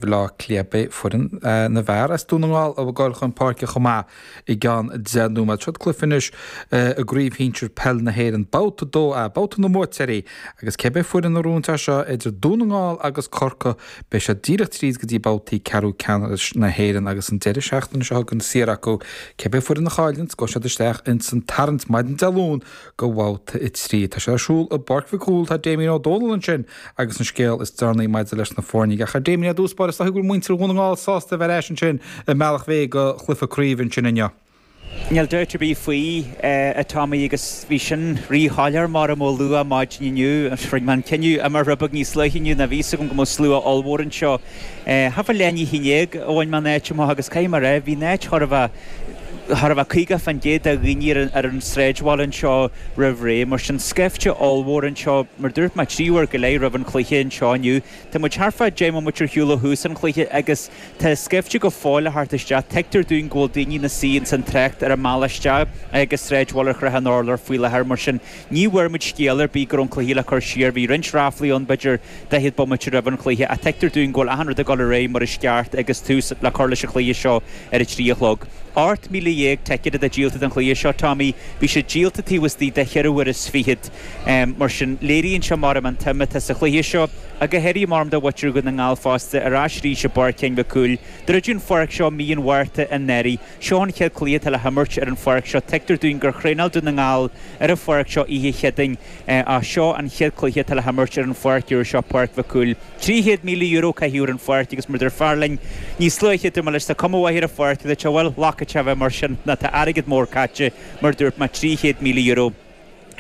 Bhleá Cliath Beidh foireann na bhfear as Dún na nGall ag gabháil chun páirce chomh maith i gceann deich nóiméad. Seo cluiche anois i gCraobh Shinsear Peil na hÉireann, Babhta 2A, babhta na mbuaiteoirí, agus cé bith foireann a ghnóthaíonns seo idir Dún na nGall agus Corcaigh beidh siad díreach tríd go dtí babhtaí ceathrú ceannais na hÉireann agus an deireadh seachtaine seo chugainn saor acu. Cé bith foireann a chailleanns, gabhfaidh siad isteach ins an tarraingt maidin Dé Luain, do bhabhta a trí. Tá sé ar siúl i bPáirc Mhic Cumhaill. Tá Damien Ó Dónaill ansin agus an scéal is deireanaí maidir leis na foirne. Ach, a Damien, ar dtús báire, is dóigh go bhfuil muintir Dhún na nGall sásta a bheith ar ais ansin i mBealach Féich do chluiche craoibhe ansin inniu. Níl dabht ar bith faoi, a Tommy, agus bhí sin rí-shoiléir mar, em, luath maidin inniu. Rinne mé an cinneadh imeacht rud beag níos luaithe inniu ná bhí's agam go mbeadh slua ollmhór anseo. Thart fá leath i ndiaidh a haon déag a bhain mé an áit amach agus caithfidh mé a rá, bhí an áit chóir a bheith, chóir a bheith 50% de dhaoine ar an sráidbhaile anseo roimh ré, mar sin scaifte ollmhór anseo, mar dúirt mé, trí uair go leith roimh an chluiche anseo inniu. Tá muid thart fá dheich mbomaite ar shiúl ó thús an chluiche agus tá scaifte go fóill le theacht isteach. Tuigtear dúinn go bhfuil daoine ina suí ins an trácht ar an mbealach isteach agus sráidbhaile Shrath an Urláir faoi láthair mar sin Ní bhfuair muid scéal ar bith go raibh an cluiche le cur siar, bhí roinnt ráflaí ann b'fhéidir daichead bomaite roimh an chluiche, ach tuigtear dúinn go bhfuil achan rud ag dul ar aghaidh mar is ceart agus tús le cur leis an chluiche seo ar a trí a chlog. Ocht míle dhéag ticéad atá díolta don chluiche seo, Tommy, bhí siad díolta taobh istigh de cheithre uaire is fichead, mar sin léiríonn sé, mar, em, an tsuim atá sa chluiche seo, ach go háirithe, mar, em, do mhuintir Dhún na nGall fosta, ar ais arís i bPáirc Sheáin Mhic Cumhaill, druideadh an pháirc seo mí an Mhárta anuraidh. Seo an chéad cluiche atá le himirt ar an pháirc seo. Tuigtear dúinn gur thraenáil Dún na nGall ar an pháirc seo oíche Chéadaoin ach seo an chéad cluiche atá le himirt ar an pháirc úr seo, Páirc Mhic Cumhaill. €300,000 caitheadh ar an pháirc agus mar a dúirt fear linn níos luaithe, dúirt muid leis. Tá cuma mhaith ar an pháirc dúirt, bhuel ba cheart di a bheith mar sin ná tá airgead mór caite, mar a dúirt mé, €300,000.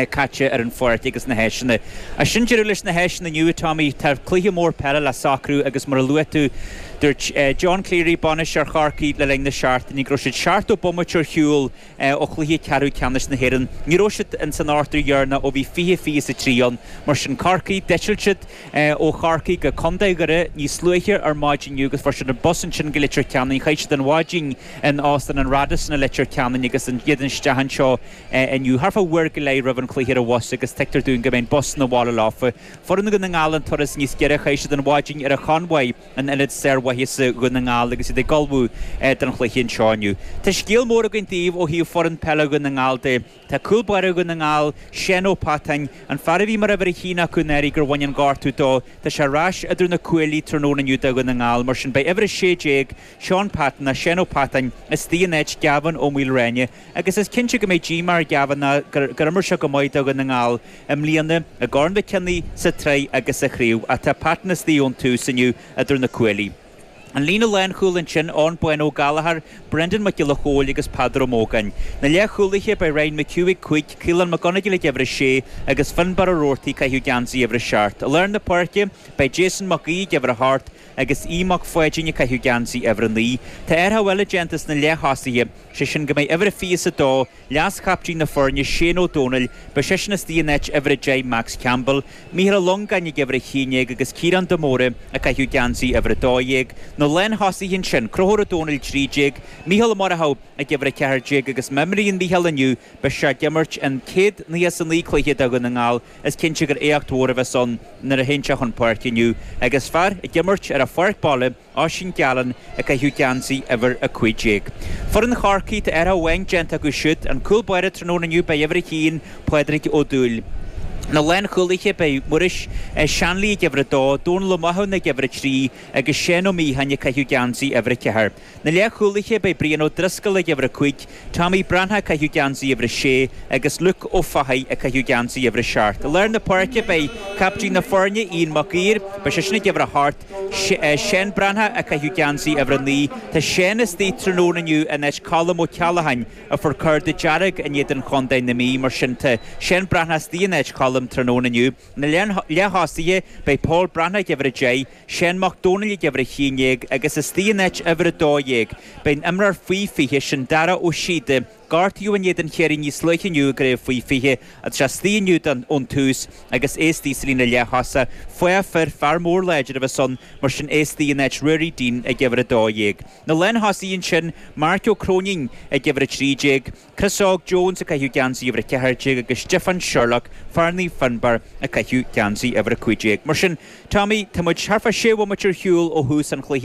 caite ar an pháirc agus na háiseanna. Ach sin deireadh leis na háiseanna inniu, a Tommy. Tá cluiche mór peile le socrú agus mar a luaigh tú, dúirt John Cleary, bainisteoir Chorcaí le linn na seachtaine go raibh siad seachtó bomaite ar shiúl ó chluiche ceathrú ceannais na hÉireann. Ní raibh siad ins an ochtar dheireanach ó bhí fiche fiche is a trí ann. Mar sin Corcaigh, d'eitil siad ó Chorcaigh go Contae Dhoire níos luaithe ar maidin inniu agus fuair siad an bus ansin go Leitir Ceanainn. Chaith siad an mhaidin in Óstán an Radisson i Leitir Ceanainn agus iad isteach anseo. inniu. Thart fá uair go leith roimh an chluiche ar an bhus agus tuigtear dúinn go mbeidh an bus 'na bhaile leofa. Foireann Dhún na nGall an turas níos giorra, chaith siad an mhaidin ar an Chonmhaigh, an ionad sármhaitheasa Dhún na nGall agus iad ag ullmhú don chluiche anseo inniu. Tá scéal mór againn daoibh ó thaobh foireann peile Dhún na nGall de. Tá cúl báire Dhún na nGall, Seán Ó Peatáin, an fear a bhí mar uimhir a haon acu anuraidh gur bhain an gortú dó, tá sé ar ais idir na cuaillí tráthnóna inniu do Dhún na nGall, mar sin beidh uimhir 16, Shaun Patton, ná Seán Ó Peatáin, istigh in áit Gavin Ó Maoilreáine, agus is cinnte go mbeidh díomá ar Gavin ná gur imir sé go maith do Dhún na nGall i mbliana, i gCorn Mhic Cionnaith, sa tsraith agus sa chraobh, ach tá Patton istigh ón tús inniu idir na cuaillí. An líne lánchúil ansin, Eoghan Bán Ó Gallchóir, Brendan Mac Giolla Chóill agus Peadar Ó Mógáin. Na leathchúlaithe, beidh Ryan McHugh ag cúig, Caolán McGonagle ag uimhir a sé, agus Finbarr Ó Rabhartaigh ag caitheamh geansaí uimhir a seacht. I lár na páirce, beidh Jason Mac Aoidh ag uimhir a hocht, Agus Aodh Mac Pháidín ag caitheamh geansaí uimhir a naoi, tá athrach eile déanta sna leath-thosaithe, sé sin go mbeidh uimhir a 22, leas-chaptaen na foirne, Shane Ó Domhnaill, beidh seisean istigh in áit uimhir a deich, Max Campbell, Mícheál Ó Longáin ag uimhir a haon déag agus Ciarán de Mórdha ag caitheamh geansaí uimhir a dó dhéag. Na lánthosaithe ansin, Conchúr Ó Domhnaill 13, Mícheál Ó Murchú ag uimhir a ceathair déag agus má imríonn Mícheál inniu, beidh sé ag imirt an céad nócha is a naoi cluiche do Dhún na nGall. Is cinnte gur éacht mhór a bheas ann nuair a théann sé chun páirce inniu agus fear ag imirt ar a pháirc baile Oisín Gallen ag caitheamh geansaí uimhir a cúig déag. Foireann Chorcaí tá athrach amháin déanta acu siúd, an cúl báire tráthnóna inniu beidh uimhir a haon, Pádraig Ó Dúill. Na lánchúlaithe beidh Muiris Ó Seanlaí ag uimhir a dó, Dónal Ó Mathúna ag uimhir a trí agus Seán Ó Miachain ag caitheamh geansaí uimhir a ceathair. Na leathchúlaithe, beidh Brian Ó Drisceoil ag uimhir a cúig, Tommy Breathnach ag caitheamh geansaí uimhir a sé agus Luke Ó Fathaigh ag caitheamh geansaí uimhir a seacht. I lár na páirce, beidh captaen na foirne, Ian Mac Uidhir, beidh seisean ag uimhir a hocht, Seán Breathnach ag caitheamh geansaí uimhir a naoi. Tá Seán istigh tráthnóna inniu in áit Colm Ó Ceallacháin a fuair cárta dearg in éadan Chontae na Mí, mar sin tá Seán Breathnach istigh in áit Choilm tráthnóna inniu. Na leath-thosaithe, beidh Pól Breathnach ag uimhir a deich, Seán Mac Dónaill ag uimhir a haon déag agus istigh in áit uimhir a dó dhéag, beidh an imreoir faoi fiche sin Dara Ó Síoda, gortaíodh in éadan Chiarraí níos luaithe inniu i gcraobh faoi fiche, agus istigh inniu don ón tús agus é istigh sa líne leath-thosaigh. Fathach fir, fear mór láidir a bheas ann, mar sin é istigh in áit Ruairí Deane ag uimhir a dó dhéag. Na lánthosaithe ansin, Marc Ó Cróinín ag uimhir a trí déag, Chris Óg Jones, ag caitheamh geansaí uimhir a ceathair déag, agus Stiofán Sherlock, fear Naomh Fionnbarr, ag caitheamh geansaí uimhir a cúig déag. Mar sin, Tommy, tá muid thar fá sé bhomaite ar shiúl ó thús an chluiche.